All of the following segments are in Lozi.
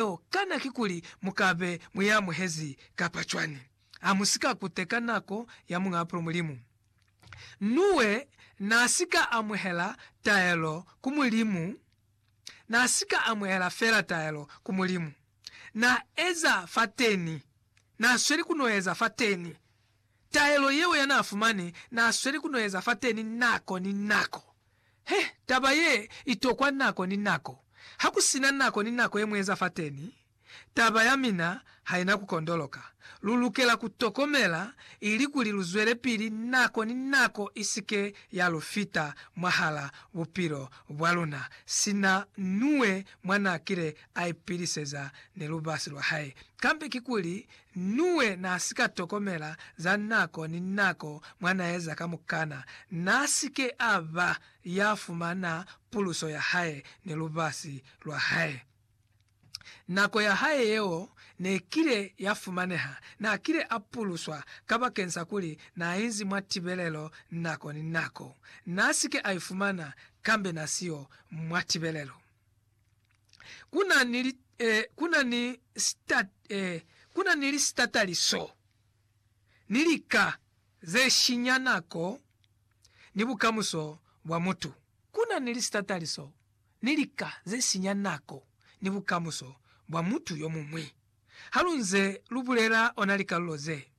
Yeo kana kikuli mu ka be mu i amuhezi kapa cwani? Ha mu si ka kuteka nako ya Muñ'a Bupilo Mulimu. Nuwe n'a si ka amuhela taelo ku Mulimu, n'a si ka amuhela fela taelo ku Mulimu. N'a eza fateni, n'a sweli ku no eza fateni. Taelo yeo ya n'a fumani n'a sweli ku no eza fateni nako ni nako. He, taba ye i tokwa nako ni nako. Ha ku si na nako ni nako ye mu eza fateni, taba ya mina ha i na ku kondoloka. Lu lukela ku tokomela ilikuli lu zwelepili nako ni nako i si ke ya lu fita mwahala bupilo bwa luna, sina Nuwe mwa n'a kile a ipiliseza ni lubasi lwa hae. Kambe kikuli Nuwe naasika tokomela za nako ni nako mwanaeza kamukana naasike aba yafumana puluso yahae ni lubasi lwahae. Nako yahae yeo nekile yafumaneha, naakile apuluswa kabakeni sa kuli naainzi mwa tibelelo nako ni nako. Naasike aifumana kambe nasiyo mwa tibelelo. ku na ni li, eh, ku na ni sita, eh, ku na ni lisitataliso ni lika ze shinya nako ni bukamuso bwa mutu. Ku na ni lisitataliso ni lika ze sinya nako ni bukamuso bwa mutu yo muñwi. Ha lu nze lu bulela ona likalulo ze,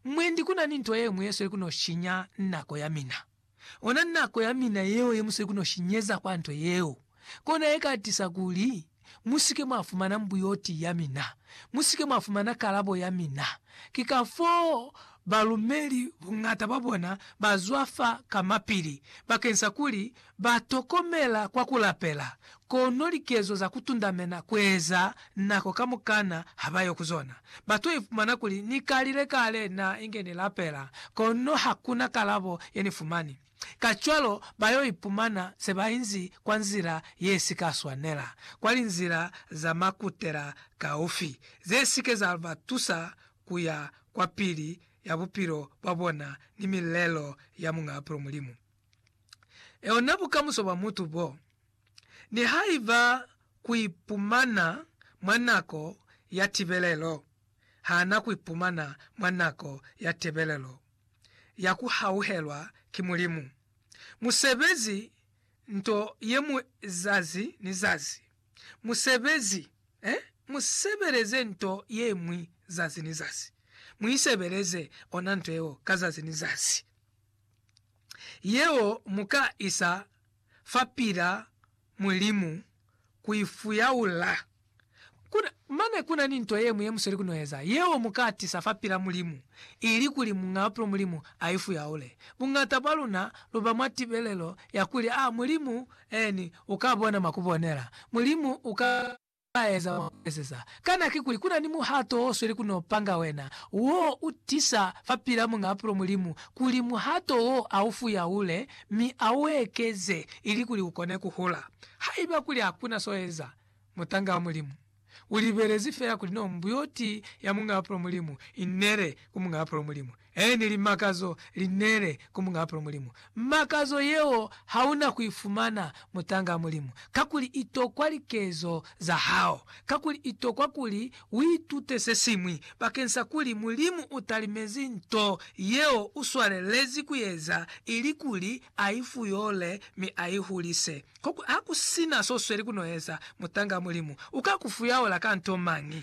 mwendi ku na ni nto ye ñwi ye sweli ku no shinya nako ya mina. Ona nako ya mina yeo ye musweki no shinyeza kwa nto yeo, kona ye ka tisa kuli musike mwa fumana mbuyoti ya mina, musike mwa fumana kalabo ya mina. Ki kafoo balumeli buñata bwa bona ba zwafa ka mapili bakeñsa kuli ba tokomela kwa ku lapela, Kono likezo za kutundamena kueza nako kamukana habayo kuzona. Batu ifumana kuli, Nikalile kale na inge nilapela, kono hakuna kalabo yenifumani. Kacwalo bayo ipumana sebainzi kwa nzila yesika swanela, kwa linzila za makutela kaufi, zesike za batusa kuya kwapili ya bupilo bwabona ni milelo ya Muñ'a Bupilo Mulimu. yona bukamuso bwa mutu bo, nihaiba kuipumana mwa nako ya tibelelo, hana kuipumana mwa nako ya tebelelo ya kuhauhelwa ki Mulimu. Musebezi nto yemwi zazi ni zazi. Musebezi, eh? Musebeleze nto yemwi zazi ni zazi. Muisebeleze ona nto yeo ka zazi ni zazi. yeo mu ka isa fapil'a Mulimu ku i fuyaula. Ku na, mane ku na ni nto ye ñwi ye mu sweli ku n'o eza, yeo mu ka tisa fapil'a Mulimu, ili kuli Muñapulo Mulimu a i fuyaule. Buñata bwa luna lu ba mwa tibelelo ya kuli, A Mulimu, Ee, ni, u ka bona mwa ku bonela. Mulimu u ka. balaeza wa ku ezeza kana kikuli ku na ni muhato wo sweli ku no panga wena, wo u tisa fapil'a Muñ'a Apulo Mulimu, kuli muhato wo a u fuyaule mi a u ekeze ilikuli u kone ku hula. Haiba kuli ha ku na s'o eza, mutanga wa Mulimu, u libelezi fela kuli no mbuyoti ya Muñ'a Apulo Mulimu i nele ku Muñ'a Apulo Mulimu. Ene li makazo li nele ku Muñ'a Bupilo Mulimu. Makazo yeo ha u na ku i fumana mutangaa Mulimu, kakuli i tokwa likezo za hao, kakuli i tokwa kuli u itute se siñwi bakeng sa kuli Mulimu u talimezi nto yeo u swalelezi ku eza, ili kuli a i fuyole mi a i hulise. Koku ha ku si na s'o sweli ku no eza, mutangaa Mulimu u ka ku fuyaula ka nto mañi?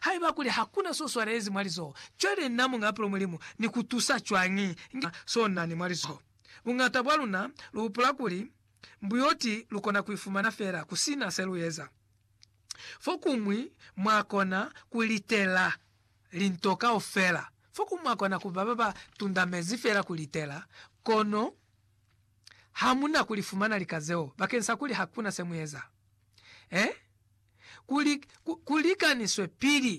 Haiba kuli hakuna so swalelezi mwa lizoho, cwale na Muñ'a Pulo Mulimu ni ku tusa cwañi nga so na ni mwa lizoho? Buñata bwa luna lu hupula kuli, Mbuyoti lu kona ku i fumana fela ku si na se lu eza. Fokuñwi mwa kona ku litela linto kaufela. Fokuñwi mwa kona ku ba ba ba tundamezi fela ku litela, kono hamuna kuli fumana lika zeo bakeng sa kuli hakuna se mueza. Eh? Kuli, ku, ku likaniswe pili.